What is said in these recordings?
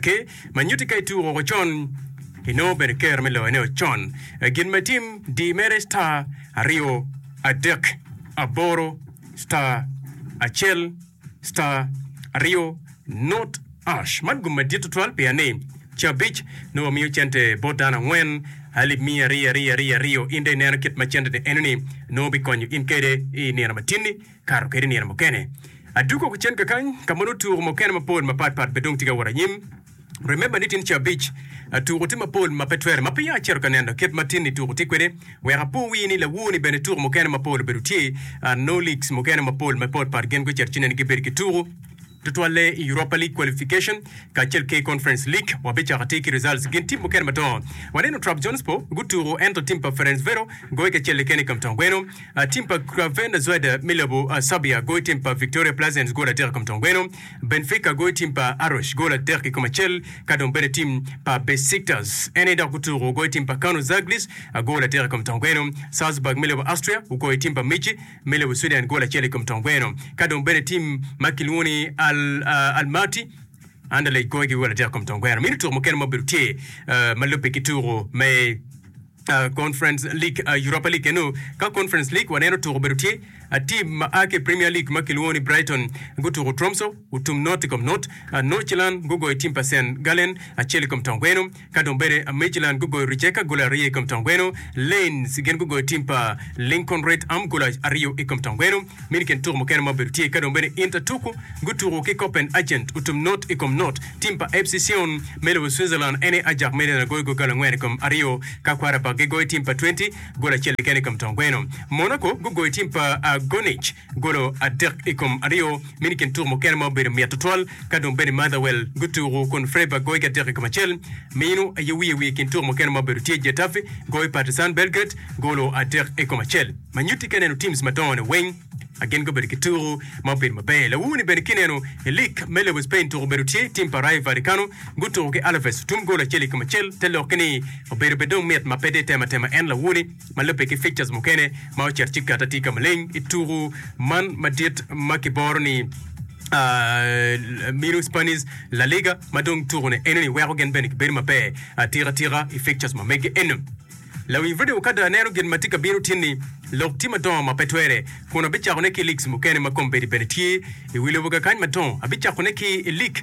Ki ma nyutti ka ituku woko con, inongo bene ikero me loyone o con. Gin ma itim, di mere star aryo adek aboro star acel star aryo nut ash. Man gum madit tutwal pien ni cabic nongo wamiyo cente bot dano angwen alip miya ariyo ariyo ariyo ariyo. In dong ineno kit ma cente-ni enoni nongo bikonyo in kede i nino matinni. Kato kede nino mukene adwogo woko cen kakany ka ma nongo tuko mukene mapol mapat pat pe dong tye ka wot anyim. Remember ni tin ca abic tuko tye mapol ma pe twere ma peya acito ka neno kit ma tin ni tuko tye kwede. Wek apo wii ni lawu ni bene tuko mukene mapol obedo tye nongo leagues mukene mapol mapot pat gin gucito ci neni gibedo ki tuko. Tutwalle i Europa League Qualification kacel ki Conference League, wabicako atir ki results. Gin tim mukene madongo waneno Trabzonspor gutuku ento tim pa Ferencvero goyo kacel keken i kamtong gweno. Tim pa Crvena Zvezda me lobo Serbia goyo tim pa Victoria Plzenes gol adek i kamtong gweno. Benfica goyo tim pa Arosh gol adek ki kom acel ka dong bene tim pa Besiktas ene dok gutuku goyo tim pa Kano Zaglis gol adek i kamtong gweno. Salzburg me lobo Austria gugoyo tim pa Michi. me lobo Sweden gol acel i kom tong gweno, ka dong bene tim ma kilwongo ni Al Almaty Anderlecht goyo ki gol adek i kom tong gweno. Mini tuko mukene ma obedo tye ma lubbe ki tuko me Conference League, Europa League eno. Ka Conference League waneno tuko obedo tye tim ma a ki Premier League ma kilwongo ni Brighton gutuko Tromso otum not i kom not. Nordsjælland gugoyo tim pa St Gallen acel i kom tong gweno. Ka dong bene Midtjylland gugoyo Rijeka goli aryo i kom tong gweno, Lens gin gugoyo tim pa Lincoln Red Arm goli aryo i kom tong gweno. Mini kin tuku mukene ma obedo tye ka dong bene Intertuku gutuku ki Copenhagen otum not i kom not. Tim pa FC Sion me lobo Switzerland ene Ajax München agoyo goli angwen i kom aryo ka Quarabag gigoyo tim pa Twente goli acel keken i kom tong gweno. Monaco gugoyo tim pa Gornich. Golo adek i kom aryo meno i kin tuko mukene ma obedo mit tutwal. Ka dong bene Motherwell gutuku kun Freiburg goyo ki adek i kom acel. Meno aye wiye wiye i kin tuko mukene ma obedo tye Getafe goyo Partizan Belgrade golo adek i kom acel. Ma nyutti ka ineno teams madongo ni weng a gin gubedo ki tuku ma obedo maber. Lawu ni bene ki ineno i lig me lobo Spain tuku obedo tye team pa Rayo Vallecano gutuku ki Alaves tum goal acel i kom acel te loki ni obedo bene dong mit ma pe dong itemo atema en lawu ni ma lubbe ki fixtures mukene ma ocit ci gatte tika maleng i tuku man madit ma kiboro ni uh, minu Spanish La Liga ma dong tukune enoni weko gin bene kibedo maber atika tika i fixtures ma mege eno. Lawi Radio Okada aneno gin ma tye ka bino tyenni lok tye madongo ma pe twere kun abicakone ki leagues mukene ma kombedi bene tye i wi lobo kakany madongo. Abicakone ki i league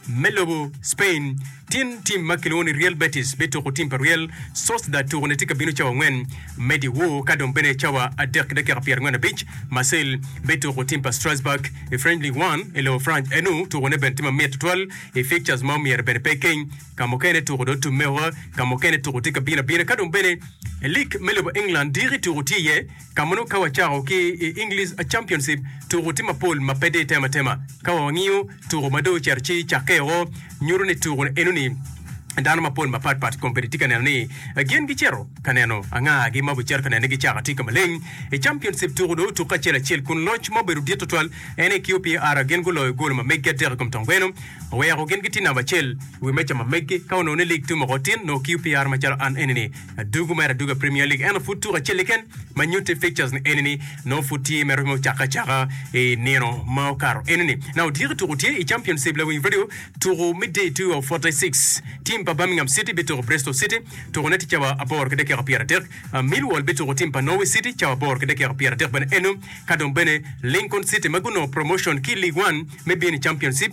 Me lobo Spain, tin tim ma kilwongo ni Real Betis bituko tim pa Real Sociedad tuko ne tye ka bino cawa angwen me dyewor ka dong bene cawa adek ki dakika pyerangwen abic. Marseille bituko tim pa Strasbourg i French Ligue One i lobo Franc. Enu tuko ne bene tye ma mit tutwal i fixtures ma omyero bene pe ikeny. Ka mukene tuko dong otumme woko, ka mukene tuko tye ka bino abina ka dong bene i lig me lobo England diki tuko tye iye. Ka mono ka wacako ki i English Championship, tuko tye mapol ma pe dir tema tema. Ka wa wangiyo tuko ma dong ocito ci cakke woko, nyuto ni tuko enoni dano mapol mapat pat kong bene tye ka neno ni gin gicito ka neno anga gi ma obicito ka nene gicaka tye ka maleng. I Championship, tuko dong otukke acel acel kun loc ma obedo dit tutwal en aye ki OPR. Gin guloyo golo ma meggi adek i kom tong gweno, oweko gin gitye namba acel i wi meja ma meggi. Ka onongo ni lig tum woko tin, nongo ki OPR macalo an enini, Adwogo mer adwoga Premier League ento pud tuko acel keken ma nyutte i fixtures ni eni ni nongo pud tye ma romo cake acaka i nino ma okato eni ni. Na otyeko tuko tye i Championship lawiny radio tuko me day 2 of 46. Team pa Birmingham City bituko Bristol City, tuko ne tye cawa aboro ki dakika pyera dek. Millwall bituko team pa Norwich City cawa aboro ki dakika pyera dek bene eno, ka dong bene Lincoln City ma gunongo promotion ki League One me bino i Championship,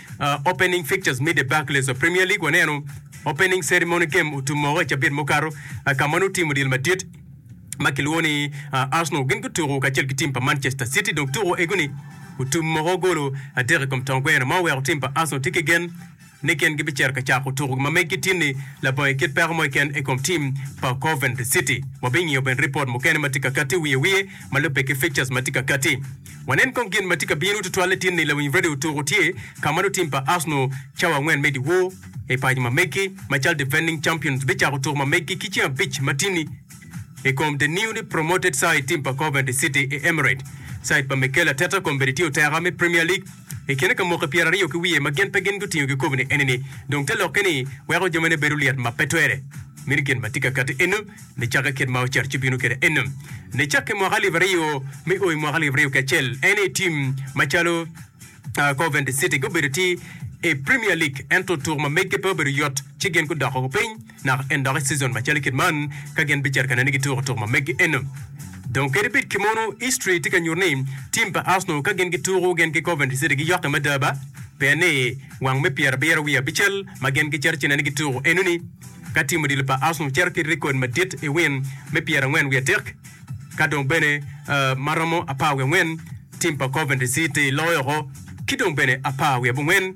Opening Fixtures me The Barclays of Premier League Waneno Opening Ceremony Game otum moko i cabit mukato ka ma nongo tim odyelo madit ma kilwongo ni Arsenal gin gutuko kacel ki tim pa Manchester City dong tuko ego ni otum moko golo adek i kom tong gweno ma oweko tim pa Arsenal tye ki gen ni gin gibicito ka cako tukogi ma meggi tin ni labongo i kit peko mo keken i kom tim pa Coventry City. Wabingiyo bene ripot mukene ma tye ka kati wiye wiye ma lubbe ki fixtures ma tye ka kati. Wanen kong gin ma tye ka bino tutwal latin ni lawiny radio tuko tye ka ma lutim pa Arsenal cawa angwen me dyewor i paco ma megi macalo defending champions bicako tuko ma megi ki ceng abic ma tini i kom the newly promoted side tim pa Coventry City i Emirates side pa Mikel Arteta kombeddi tye oteka me Premier League I kine ka mwaki pyera aryo ki wiye ma gin pe gin gutingo kikobine eni-ni, dong te lokke ni weko jo mene bedo lyet ma pe twere. Mini gin ma tye ka kati eno ni cakke kit ma ocer ci bino kede eno ni cakke mwaka alip aryo me o i mwaka alip aryo ki acel en i tim macalo Coventry City gubedo ti i Premier League ento tuk ma meggi pe obedo yot ci gin gudoko piny Naka en dok i cizon macalo kit man ka gin bicito ka nene gituko tuko ma megi eno. Dong kadi bed ki mono, history tye ka nyuto ni tim pa Arsenal ka gin gituko gin ki Coventry City giyokke mada ba, pien ni wang me pyerabiro wiye abicel ma gin gicito ci nene gituko eno ni ka tim odilo pa Arsenal cito ki record madit i win me pyerangwen wiye adek ka dong bene ma romo apar wiye angwen tim pa Coventry City loyo oko ki dong bene apar wiye abongwen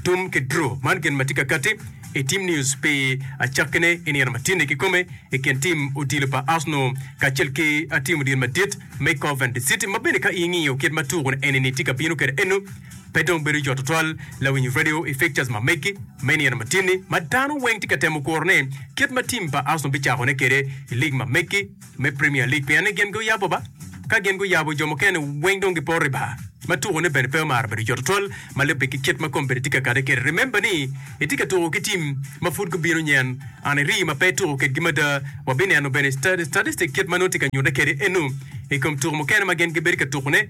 Tum ki Drew, Man gin ma tye ka katti i Team News pi acakkine i nino ma tye-ni kikome i kin tim odilo pa Arsenal kacel ki tim odilo madit me Coventry City ma bene ka ingiyo kit ma tuku eni-ni tye ka bino kwede eno pe dong bedo jo tutwal lawinyo radio i fixtures ma megi me nino ma tye-ni ma dano weng tye ka temo kurone kit ma tim pa Arsenal bicakone kwede i lig ma megi me Premier League pien ni gin guyabo ba. Ka gin guyabo, jo mukene weng dong giporo i bar. Ma tuko ne bene pe omaro bedo jot twatwal ma lubbe ki kit ma kom bene tye ka kade kede. Remember ni itye ka tuko ki team ma pud gubino nyen and iri ma pe ituko kedgi mada. Wabineno bene statistic kit ma nongo tye ka nyute kede eno i kom tuko mukene ma gin gibedo ka tuko ne.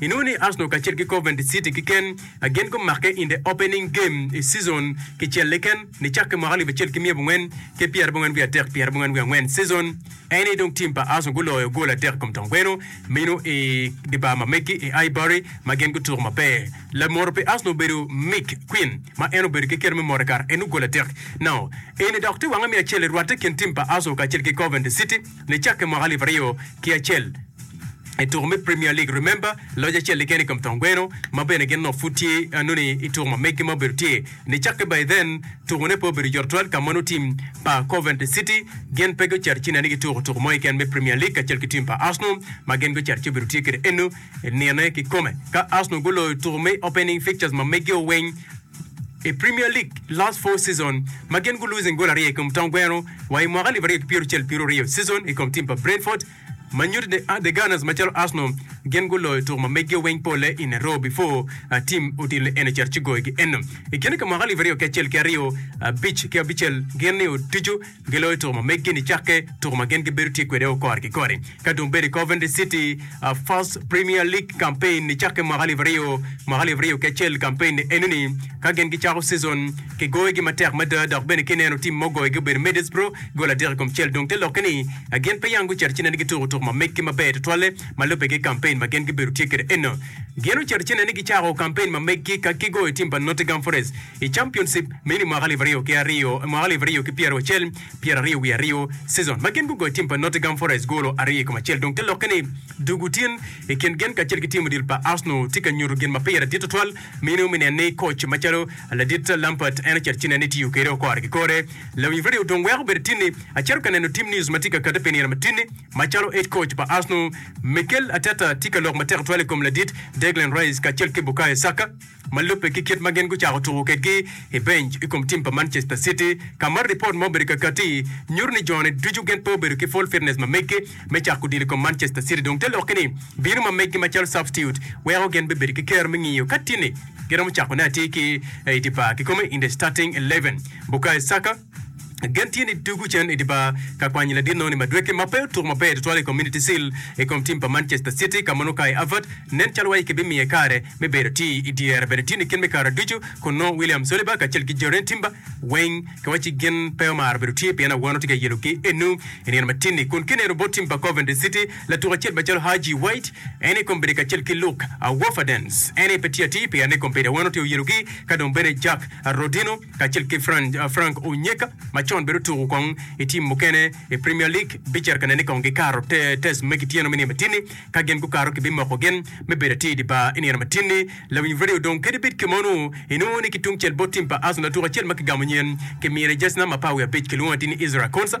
Inongo ni Arsenal kacel ki Coventry City kiken a gin gumakke in the opening game i cizon kicel liken nicakke mwaka alip acel ki miya abongwen ki pyerabongwen wiye adek pyerabongwen wiye angwen cizon en aye dong team pa Arsenal guloyo goal adek ikom tong kweno meno i dibar ma megi i Highbury ma gin gutuko maber. Lamoro pi Arsenal obedo Mick Quinn ma en obedo ki kite me moro i kare enu goal adek nao eni dok tye wange me acel irwatte kin team pa Arsenal kacel ki Coventry City. nicakke mwaka alip aryo ki acel i tuko me Premier League. Remember, loc acel keken i kom thon gweno ma bene gin onongo pud tye nongo i tuko ma megi ma obedo tye nicakke by then. Tuko ne pe obedo yot twal ka ma nongo team pa Coventry City gin pe gucito ci nene gituko tuko mo keken me Premier League kacel ki team pa Arsenal ma gin gucito ci obedo tye kede eno nine kikome ka Arsenal guloyo tuko me opening fixtures ma megi o weng. I Premier League last four season ma gin gu losing gol aryo i kom taun gweno wa i mwaka alip aryo ki pyerucel pieroryo season i kom team pa Brentford ma nyuto ni the Gunners macalo Arsenal gin gu loyo tuku ma megi o weng pole in a row before team odilo eno cito ci goyo gi eno i kine ki mwaka alip aryo ki acel ki aryo abic ki abicel gin ni otucu Giloyo tuko ma meggi nicakke, tuko ma gin gibedo tye kwede o kore ki kore. Ka dong bene Coventry City First Premier League campaign nicakke mwaka alip aryo, mwaka alip aryo ki acel campaign enoni, ka gin gicako season, kigoyogi matek mada dok bene ka ineno tim ma ogoyogi obedo Middlesbrough gol adek i kom cel. Dong te lokke ni gin pe yam gucito ci nen ni gituko tuko ma meggi maber tutwalle ma lubbe ki campaign ma gin gibedo tye kwede eno. Gin ocito ci nen ni gicako campaign ma meggi ka gigoyo tim pa Nottingham Forest. I Championship meno i mwaka alip aryo ki aryo, mwaka alip aryo ki pyera acel, pyera aryo wiye aryo, season, ma gin gugoyo tim pa Nottingham Forest golo aryo i kom acel dong te lokke ni dugu tin i kin gen kacel ki tim odilo pa Arsenal tye ka nyuto gin ma pire dit tutwal meno me neno ni coach macalo ladit Lampard en ocito ci neno ni tiyo kede okore ki kore lawi wire aryo dong weko bene tinni acito ka neno tim news ma tye ka kate pinira ma tinni macalo head coach pa Arsenal Mikel Arteta tye ka lok matek tutwal i kom ladit Declan Rice kacel ki Bukayo Saka. Ma lubbe ki kit ma gin gucako tuko kwedgi i benc i kom tim pa Manchester City, ka ma ripot ma obedo kakati nyuto ni jone ducu gin pe obedo ki full fitness ma meggi me cako odilo i kom Manchester City dong te lokke ni bino ma meggi macalo substitute weko gin bibedo ki kero me ngiyo ka tini giromo cakone atir ki i di bar kikome in the starting eleven. Bukayo Saka. Gen tye ni tugo cen i dye bar ka kwanyo ladit nongo ni Madueke ma pe otuko maber tutwal i Community Shield i kom tim pa Manchester City ka mono Kai Havertz nen calo waci kibimiye kare me bedo atir i dyere bene tye nikin me kare ducu kun nongo William Saliba kacel ki Jurrien Timber weng ki waci ci gin pe omaro bedo tye pien awano tye ka yelo ki enu i nino matini kun kineno bot tim pa Coventry City latuk acel macalo Haji White en i kombedi kacel ki Luke Woferdens en aye pe tye atir pien ni kombedi awano tye oyelo gi ka dong bene Jack Rodino kacel ki Frank Onyeka ma con bene otuku kong i tim mukene i Premier League bicer ka nen ni kong gikato test me kityeno me nino matini. Ka gin gukato, kibimoko gin me bedo atir idi bar i nino matini. Lawiny Radio dong kadi bed kema onwo inwongo ni ki tungcel bot tim pa Arsenal tuku acel ma kigamo nyen kimine jersey number apar wiye abic kilwongo atir ni Israel Konsa.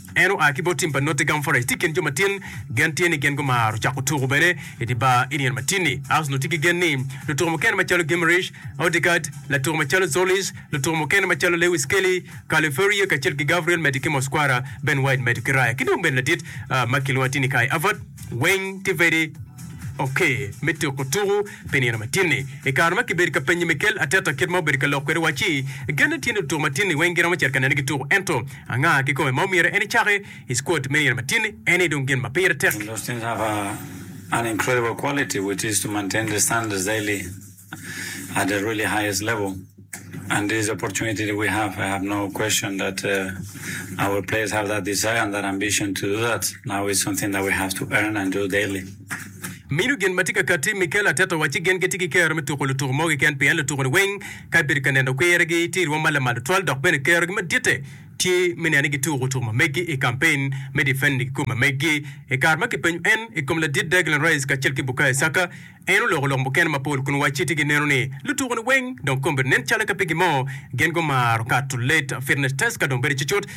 En oa ki bot tim pa Nottingham Forest, tye i kin jo matin gen tye ni gin gumaro cako tuku bene i dye bar i nino matin-ni. Arsenal tye ki gen ni lutuku mukene macalo Guimaraes, Odegaard, latuku macalo Zolis, lutuku mukene macalo Lewis Kelly, Carlo Ferrier kacel ki Gabriel medo ki Mosquera, Ben White medo ki Raya ki dong bene ladit ma kilwongo ni Tini Kai Avart weng tye very ok me tuku tuku pi nino matin-ni. I kare ma kibedo ka penyo Mikel Arteta kit ma obedo ka lok kwede wacci, genne tye ni lutuku matin-ni weng giromo cito ka neno gituku ento Anga kikome ma omyero en ecaki i skuot me yero matini? Eni dong gin ma pire tek. Mino gin ma tye ka katti. Mikel Arteta owaci gin gitye ki kero me tuko lutuku mo keken pien lutuku-ni weng Ka ibedo ka neno kwirgi, tye irwom ma lamal tutwal dok bene kerogi maditte tye me neno ni gituko tuko ma meggi i kampen me difenni kikome meggi. I kare ma kipenyo en i kom ladit Declan Rice kacel ki Bukayo Saka, en oloko lok mukene mapol kun wacci tye ki neno ni lutuko-ni weng dong kombedo nen calo ka pigi mo gin gumaro kato late fitness test ka dong bedo cucut.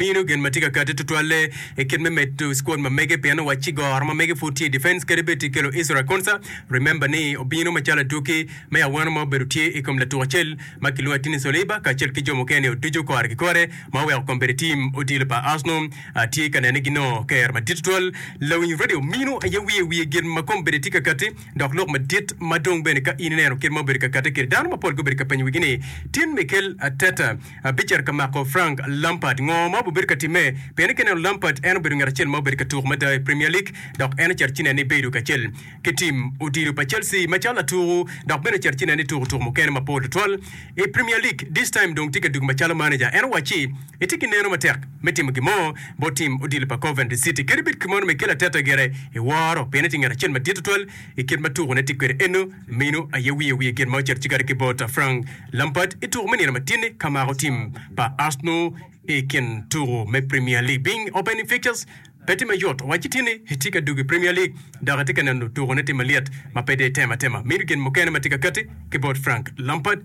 Mino gin ma tye ka kati tutwalle i kit me medo squad ma mege pien owac ci goro ma mege pud tye i defense kadi bed tye kelo Israel Konsa, remember ni obino macalo atuki me awano ma obedo tye i kom latuk acel ma kilwongo ni Tini Soliba kacel ki jo mukene o ducu kore ki kore ma oweko kom bedo i team odilo pa Arsenal tye ka nene ginongo ker madit tutwal. Lawiny radio mino aye wiye wiye gin ma kom bene tye ka kati. Dok lok madit ma dong bene ka in ineno kit ma obedo ka kate kede dano mapol gubedo ka penyo wigi ni, Tin Mikel Arteta bicito ka mako Frank Lampard? Ngo ma obibedo ka timme? Pien ka ineno Lampard en obedo ngat acel ma obedo ka tuko mada i Premier League dok en ocito ci nene ni bedo kacel ki tim odilo pa Chelsea macalo latuku dok bene ocito ci nene ni tuko tuko mukene mapol tutwal i Premier League. This time dong tye ka dugo macalo manager. En owacci. Itye ki neno matek me timo gin mo bot tim odilo pa Coventry City? Kadi bed kimono ma ikelo ateta gire, iworo pien itye ngat acel madit tutwal i kit ma tukone tye kwede eno. Meno aye wiye wiye gin ma ocito cikare ki bot Frank Lampard i tuko me nino ma tyenni ka mako tim pa Arsenal i kin tuko me Premier League. Ping opening fixtures pe tye mayot? Wacci tyenni itye ka dwogo i Premier League dok itye ka neno tukone tye malyet ma pe dong itemo atema. Meno gin mukene ma tye ka katti ki bot Frank Lampard.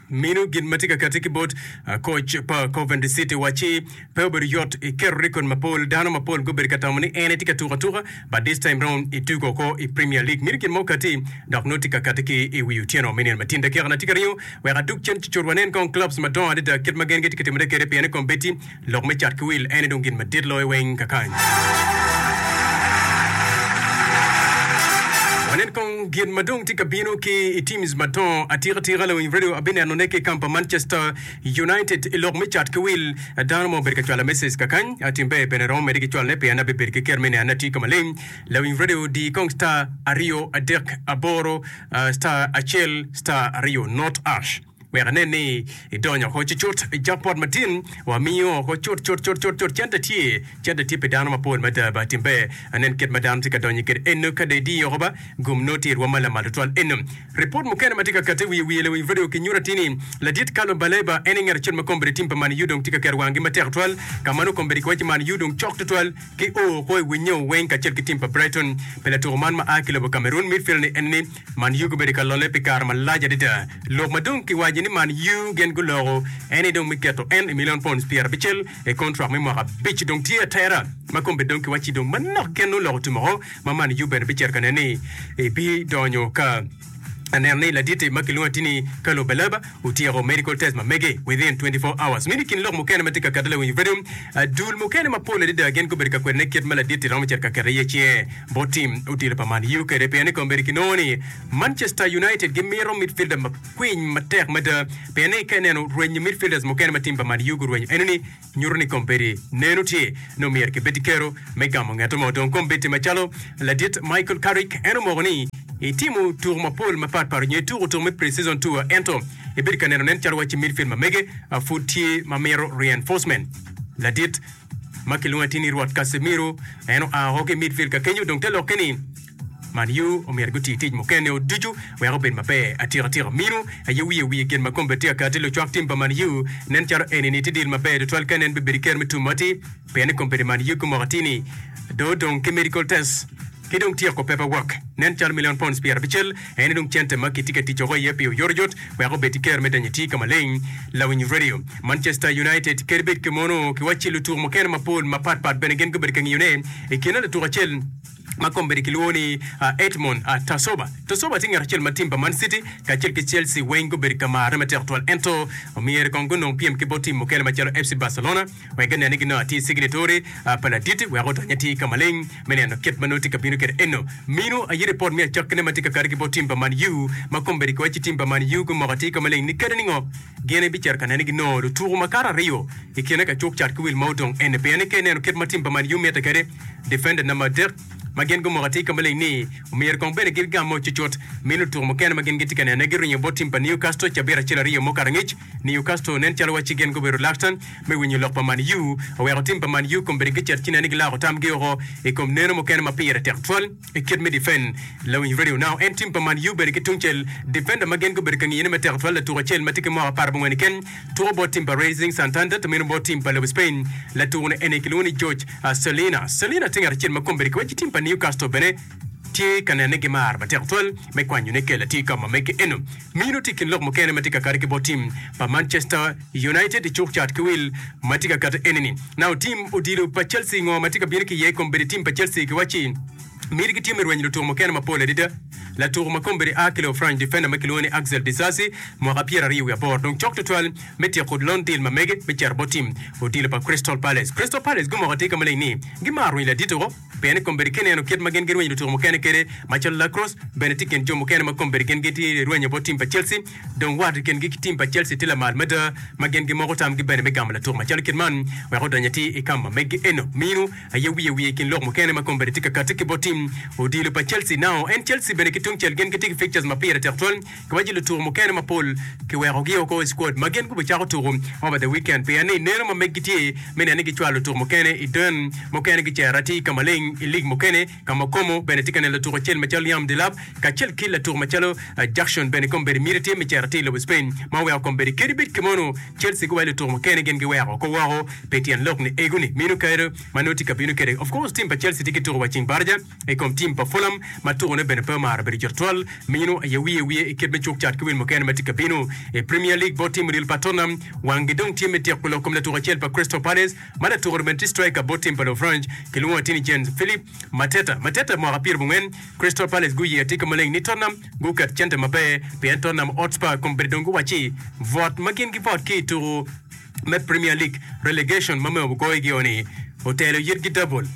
Minu gin ma tye ka kati ki bot koc pa Coventry City wacci, Pe obedo yot iketo rekod mapol. Dano mapol gubedo ka tamo ni en aye tye ka tuko atuka, but this time round itugo oko i Premier League. Minu gin ma okati dok nongo tye ka kati ki i wi otyeno me nino ma tin. Dakika na tye ka ringo wek adug cen cucut wanen kong clubs madongo adada kit ma gen gitye ka timone kwede pien ni kombeddi Lok me cat ki wil ene dong gin madit loyo weng kakany. Wanen kong gin ma dong tye ka bino ki i teams madongo. Atika tika lawiny radio abinenone ki kampa Manchester United i lok me cat ki wil. Dano ma obedo ka cwala message kakany, atimbe bene romo mede ki cwalone pien abibed ki ker me nene atye ka maleng. Lawiny radio di kong star aryo adek aboro star acel star aryo not ash. Wek anen ni idonyo ko cucut i jackpot matin, wamiyo ko cut cut cut cut cut cente tye, cente tye pi dano mapol mada ba timbe anen kit ma dano tye ka donyo kede eno kada idiyo oko ba gum noo tyer wa ma lamal tutwal eno. Report mukene matye ka kate wiye wiye lawiny radio kinyuto atir ni ladit Carlo Baleba en aye ngat acel ma kombeddi tim pa Man U dong tye ka keto wang gi matek twal ka ma nongo kombeddi kiwaco ni Man U dong cok tutwal ki oo ko i winnye oo weng kacel ki tim pa Brighton pi latuko man ma aa ki lobo Cameroon midfield ni en ni Man Yu gubedo ka lolle pi kare malac adada. Lok ma dong kiwaco ni Man Yu gin guloko en aye dong me keto en i milion pounds pyer abicel i kontrak me mwaka abic. Dong tye atera ma kombe dong kiwacci dong manok keken nongo loko tum oko ma Man Yu bene bicito ka nene ni ebidonyo ka aneno ni laditi ma kilwongo atini Carlo Baleba Otyeko medical test ma mege within twenty four hours. Meno i kin lok mukene ma tye ka kette lawiny i Freedom, dul mukene mapol adada gin gubedo ka kwede ni kit ma ladit-ti romo cito ka kete iye ce bot tim odilo pa Man U kede pien ni kong bedo ki nongo ni Manchester United gimito midfielder makwiny matek mada pien ni ka ineno rwenyo midfielders mukene ma tim pa Man U gurwenyo enoni nyuto ni kombeddi nenu tye nongo myero kibed ki kero me gamo ngeto mo. Dong kombeddi macalo ladit Michael Carrick en omoko ni, Itimo tuku mapol mapat pat nyo ituko tuku me pre-season tour ento ibedo ka neno nen calo wacci midfield ma mege pud tye ma mito reinforcement. Ladit ma kilwongo atir ni Rwot Casemiro en oa woko ki i midfield ka kenyo dong te lokke ni, Manyu omyero guti tic mukene o ducu wek obed maber. Atyeko atyeka minu aye wiye wiye gin ma kombe tye akati lucwak tim pa Manyu. Nen calo eni ni tye deal maber tutwal ka nen bibedo i ker me tum mati pien ni kombe di Manyu ki moko atini do dong ki medical test ki dong tyeko paper work nen calo million pounds pyera bicel eni dong cente ma ki tye ka ticoko iye pi oyot oyot wek obed i ker me danyo ti ka maleng. Lawiny radio. Manchester United kadi bed ki mono ki wacci lutuko mukene mapol mapat pat bene gin gubedo ka ngiyo ne i kine lutuko acel ma kombeddi kilwongo ni Edmond Tasoba. Tasoba tye ngat acel ma tim pa Man City kacel ki Chelsea weng gubedo ka marre matek twal ento myero kong gunong pyem ki bot tim mukene macalo FC Barcelona wek ginen ni ginongo atir cignituri pa laditi wek odony atir ka maleng me neno kit ma nongo tye ka bino kwede eno. Mino aye ripot me acokkine ma tye ka kati ki bot tim pa Man U ma kombeddi kiwaco ci tim pa Man U gumoko atir ka maleng ni kadi ningo? Gin ibicito ka nene ginongo lutuku makato aryo i kine ka cuk cat ki wil ma odong ene pien ni ka ineno kit ma tim pa Man U mitte kede difenda namba adek ma gin gumoko atir ka maleng ni omyero kong bene gin gamme ocucut min lutuku mukene ma gin gitye ka nene giringo bot tim pa Newcastle cabit acel aryo mo karangic Newcastle nen calo wacci gin gubedo reluctant me winyo lok pa Man U oweko tim pa Man U kombeddi gicit ci nene gilako tamgi oko i kom neno mukene ma pire tek twal. I kit me defend, lawiny Radio Now en tim pa Man U bene ki tungcel, defender ma gin gubedo ka ngiyone matek twal latuk acel ma tye ki mwaka apar abongwen keken tuko bot tim pa Racing Santander to mino bot tim pa lobo Spain. Latuko ni eni kilwongo ni George Celina. Celina tye ngat acel ma kombeddi ki waci tim pa Newcastle bene tye ka nene gimaro matek twal me kwanyone kela tye ka omamme ki eno. Mino tye i kin lok mukene ma tye ka kati ki bot tim pa Manchester United icuk cat ki wil ma tye ka kati enini, Nao tim odilo pa Chelsea ngo ma tye ka bino ki iye i kom bedo i tim pa Chelsea ki wacci miti gitye me rwenyo lutuku mukene mapol adada. Latuku ma kombeddi a ki lobo Franc difenda ma kilwongo ni Axel Disasi, mwaka pyera aryo wiye aboro, dong cok tutwal me tyeko lon dil ma mege me cito bot tim odilo pa Crystal Palace. Crystal Palace gumoko atika maleng ni gimaro rwenyo ladito-go. Bene, kombeddi ki neno kit ma gin girwenyo lutuko mukene kwede, macalo Lacrosse, bene tye i kin jo mukene ma kombeddi gin gitye rwenyo bot tim pa Chelsea. Dong wat i kingi ki tim pa Chelsea tye lamal mada ma gin gimoko tamgi bene me gamo latuk macalo kit man wek odony atir i kama megi eno. Minu aye wiye wiye i kin lok mukene ma kombeddi tye ka katti ki bot tim odilo pa Chelsea. Now, en Chelsea bene ki tungcel gin gitye ki fixtures ma pire tek twal. Koma ci lutuku mukene mapol kiwekogi oko i squad ma gin gubicako tuku over the weekend pien ni ineno ma meggi tye me neno ni gicwalo lutuku mukene i den. Mukene gicero atir ka maleng i lig mukene ka ma Okomo bene tye ka neno latuk acel macalo Liam Delap kacel ki latuk macalo Jackson bene kombeddi miti tye me cito atir i lobo Spain ma oweko kombeddi kadi bed ki mono Chelsea ki wa ki lutuku mukene gin giweko oko woko pi tyen lok ni ego ni mino kare ma nongo tye ka bino kwede. Of course team pa Chelsea tye ki tuku wa ceng baraja. I kom tim pa Fulham ma tukone bene pe omaro bedo jot twal, meno aye wiye wiye i kit me cuk cat ki wil mukene ma tye ka bino. I Premier League bot tim odilo pa Tottenham, wanggi dong tye me tyeko lok kom latuk acel pa Crystal Palace ma latukere bene tye striker bot tim pa Lofranc kilwongo atir ni Jean-Philippe Mateta. Mateta mwaka pyera bongwen, Crystal Palace guye atika maleng ni Tottenham guket cente maber pien Tottenham Hotspur kom bene dong giwacci bwot ma gin gibwot ki i tuku. me Premier League relegation ma myero wugoyo gi o ni otelo yitgi double,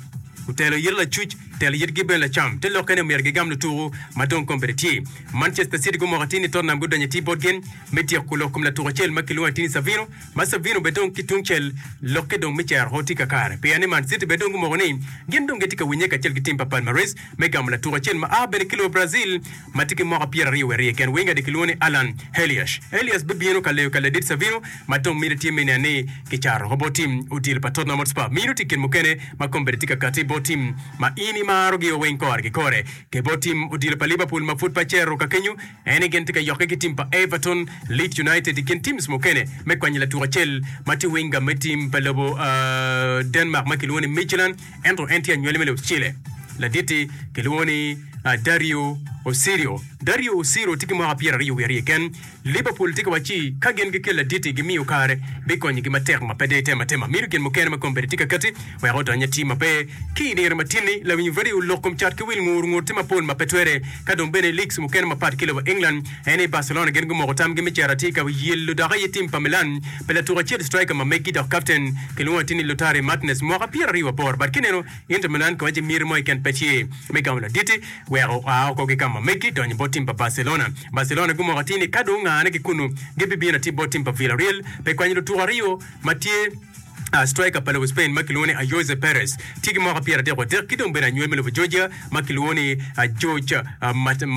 otelo yit lacuc, otelo yitgi bene lacam. Te lokke ni myero gigam lutuku ma dong kombeddi tye. Manchester City gumoko atir ni Tottenham gudonyo atir botgi me tyeko lok kom latuk acel ma kilwongo atir ni Savino, ma Savino bene dong ki tungcel lokke dong me cero o tye kakare pien ni Man City bene dong gumoko ni gin dong gitye ka winye kacel ki tim pa Palmares me gamo latuk acel ma a bene ki lobo Brazil. ma tye ki mwaka pyera ryo wiye aryo ken weng ade kilwongo ni Alan Heliash. Heliash bibino ka leyo ka ladit Savino ma dong miti tye me nen ni kicato woko bot tim odilo pa Tottenham Hotspur. Mino tye kit mukene ma kombeddi tye ka katti bot tim ma in imarogio weng kore ki kore. Ki bot tim odilo pa Liverpool ma pud pe acero ka kenyo, en ni gin tye ka yokke ki tim pa Everton, Leeds United i kin teams mukene me kwanyo latuk acel ma tye winga me tim pa lobo Denmark ma kilwongo ni Midtjylland. Ento en tye anywali me lucele. Laditti kilwongo ni Dario Osirio. Dario Osirio tye ki mwaka pyera aryo wiye aryo keken. Liverpool tye ka wac ci ka gin gikel laditti gimiyo kare bikonyogi matek ma pe de itemo atema. Mito gin mukene ma kombeddi tye ka katti wek odony atim ma pe. Ki i dire matin-ni, lawinyo redio olok kom cat ki wil ngur ngur tye mapol ma pe twere. Ka dong bene i leagues mukene mapat ki lobo England, Eni Barcelona gin gumoko tamgi me cito atika wi yelo dok aye tim pa Milan pi latuk acel striker ma meggi dok kapten kilwongo atir ni Lautari Martinez mwaka pyera aryo wa boro but kineno Inter Milan kiwaco miti mo keken pe tye me gamo laditi weko oa oko ki kama meggi donyo bot tim pa Barcelona. Barcelona gumoko atir ni kado ongane ki kunu gi bibino atir bot tim pa Villareal pi kwanyo lutuko aryo ma tye Striker pa lobo Spain ma kilwongo ni Ayoze Perez tye ki mwaka pyeratyek wadek ki dong bene anywel me lobo Georgia ma kilwongo ni George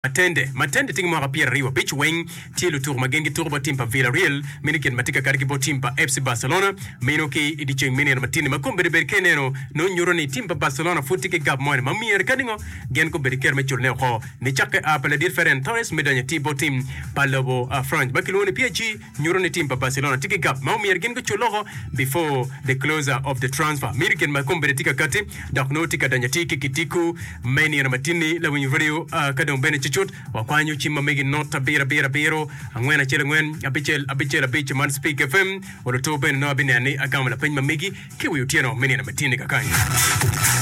Matende Matende tye ki mwaka pyeraryo abic weng tye lutuku ma gin gituku bot tim pa Villarreal meno kit ma tye ka kati ki bot tim pa FC Barcelona meno ki i dye ceng me nino matinni ma kome bedo bed ka ineno nongo nyuto ni tim pa Barcelona pud tye ki gap moni ma myero kadi ngo gin gubedo ki kero me culone woko nicakke a pa ladit Ferran Torres me donyo atir bot tim pa lobo France ma kilwongo ni PSG. nyuto ni tim pa Barcelona tye ki gap ma omyero gin gucul loko before the closure of the transfer miro i kine ma kombeddi tye ka kati dok nongo tye ka donyo atir ki kitiku me nino matinni lawiny radio aa ka dong bene cucut wakwanyo cim ma megi not abiro abiro abiro angwen acel angwen abicel abicel abic man speak FM oluto bene nongo abineno ni agamo lapeny ma megi ki wi otyeno me nino matinni kakany.